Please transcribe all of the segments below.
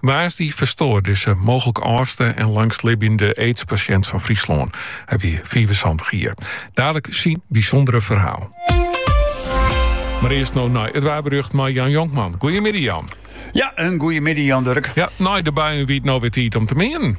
Woansdei ferstoar dizze mooglik âldste en langstlibbjende aidspasjint fan Fryslân. Hy wie fiifensantich jier. Dadelijk syn bysûndere ferhaal. Mar earst no nei it waarberjocht mei Jan Jonkman. Goeiemiddei Jan. Ja, in goeiemiddei Jan Durk. Ja, nei de buien wie it no wer tiid om te meanen.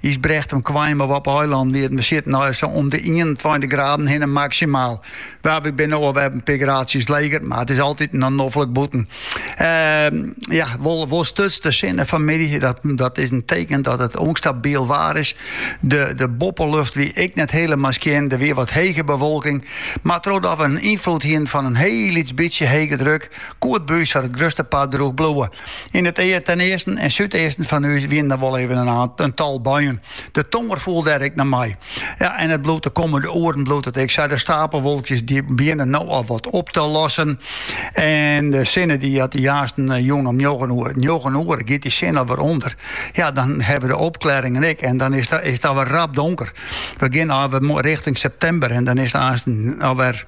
Ysbrechtum kwamen we. Op 'e eilannen wie it besjit nei sa om de ienentweintich graden hinne maksimaal. Want wy binne no alwer in pear graadsjes leger, mar it is altyd noch noflik bûten. Ehm, ja, wol, wol stuts de sinne fanmiddei. Dat, dat is in teken dat it ûnstabiel waar is. De, de boppelucht wie ek net helemaal skjin. Der wie wat hege bewolking. Mar trochdat we in ynfloed hienen fan in hiel lyts bytsje hege druk, koe it by ús foar it grutste part drûch bliuwe. Yn it ea ten easten en súdeasten fan ús wiene der wol even in tal buien. De tonger foel dêr ek noch mei. Ja, en it bliuwt de kommende oeren bliuwt it ek sa. De stapelwolkjes dy begjinne no al wat op te lossen. En de sinne dy hat aansten jûn om njoggen oere. Njoggen oere giet dy sin alwer ûnder. Ja, dan ha we de opklearingen ek en dan is it alwer rap donker. We gean alwer richting septimber en dan is it aansten alwer.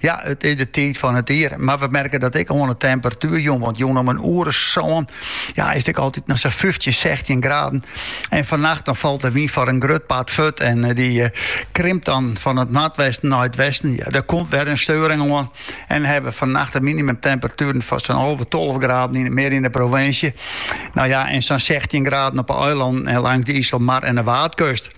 Ja, it is de tiid fan it jier, mar we merke dat ek oan 'e temperatuer. Jûn want jûn om in oere sân ja, is it ek altyd noch sa fyftjin, sechstjin graden. En fannacht dan falt de wyn foar in grut part furt en eh, die eh, krimpt dan fan it noordwesten nei it westen. Ja, der komt wer in steuring oan. En hawwe we fannacht de minimumtemperatueren fan sa'n alve, tolve graden yn it, mear yn de provinsje. No ja, en sa'n sechstjin graden op de eilannen en lâns de Iselmar en de Waadkust.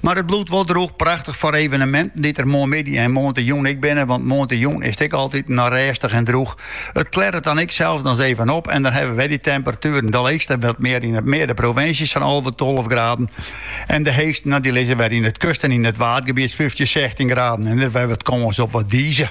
Mar it bliuwt wol droech prachtich foar eveneminten dy't der moarnmiddei en moarntejûn ek binne, want moarntejûn is it ek altyd noch rêstich en droech. It klearret dan ek sels dus even op en dan hawwe wy dy temperatueren de leechste wat mear yn it mear de provinsje sa'n alve, tolve graden en de heechste, no dy lizze wer yn it kust en yn it waadgebiet fyftjin, sechstjin graden en der wer wat kâns op wat dize.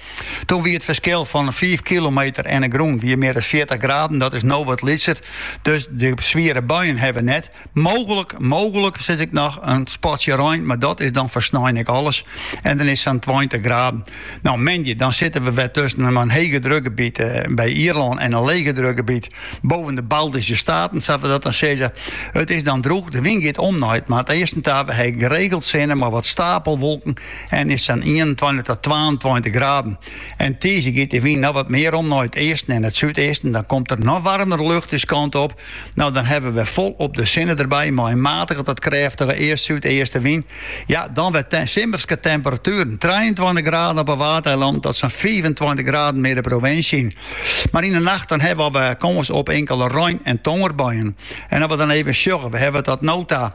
Toen wie it ferskil fan fiif kilometer en de grûn wie mear as fjirtich graden. Dat is no wat lytser, dus de swiere buien hawwe we net. Mooglik, mooglik sit ek noch in spatsje rein, mar dat is dan foar snein ek alles. En dan is sa'n tweintich graden. No, moandei, dan sitte we wer tusken in hege drukgebiet eh, by Ierlân en in lege drukgebiet boven de Baltische Staten, sa we dat dan sizze. It is dan drûch, de wyn giet om nei it noardeasten ta. We hawwe geregeld sinne, mar wat stapelwolken en is sa'n ienentweintich tot twaentweintich graden. En tiisdei giet dy wyn noch wat mear om nei it easten en it súdeasten. Dan komt der noch waarmere lucht ús kant op. No dan hawwe we folop de sinne derby mei in matige tot krêftige east-súdeastenwyn. Ja, dan wer simmerske temperatueren, trijeentweintich graden op 'e Waadeilanden tot sa'n fiifentweintich graden mear de provinsje yn. Mar yn 'e nacht dan hawwe we al wer kâns op inkele rein- en tongerbuien. En as we dan even sjogge, we hawwe tot no ta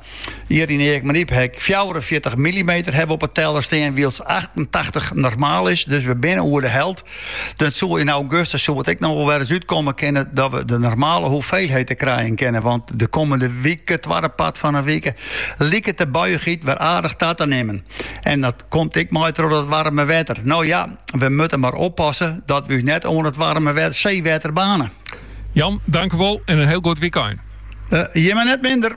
Hjir yn Eagmaryp ha ik fjouwerenfjirtich millimeter hawwe op 'e teller stean, wylst achttentachtich normaal is. Dus we binne oer de helt. Dat soe yn augustus soe it ek noch wol wer ris útkomme kinne dat we de normale hoeveelheid krijen kinne, want de kommende wike, twadde part fan 'e wike, liket de buiichheid wer aardich ta te nimmen. En dat komt ek mei troch dat waarme wetter. No ja, we moatte mar oppasse dat we ús net oan it waarme seewetter baarne. Jan, dankewol en in hiel goed wykein. Jimme net minder.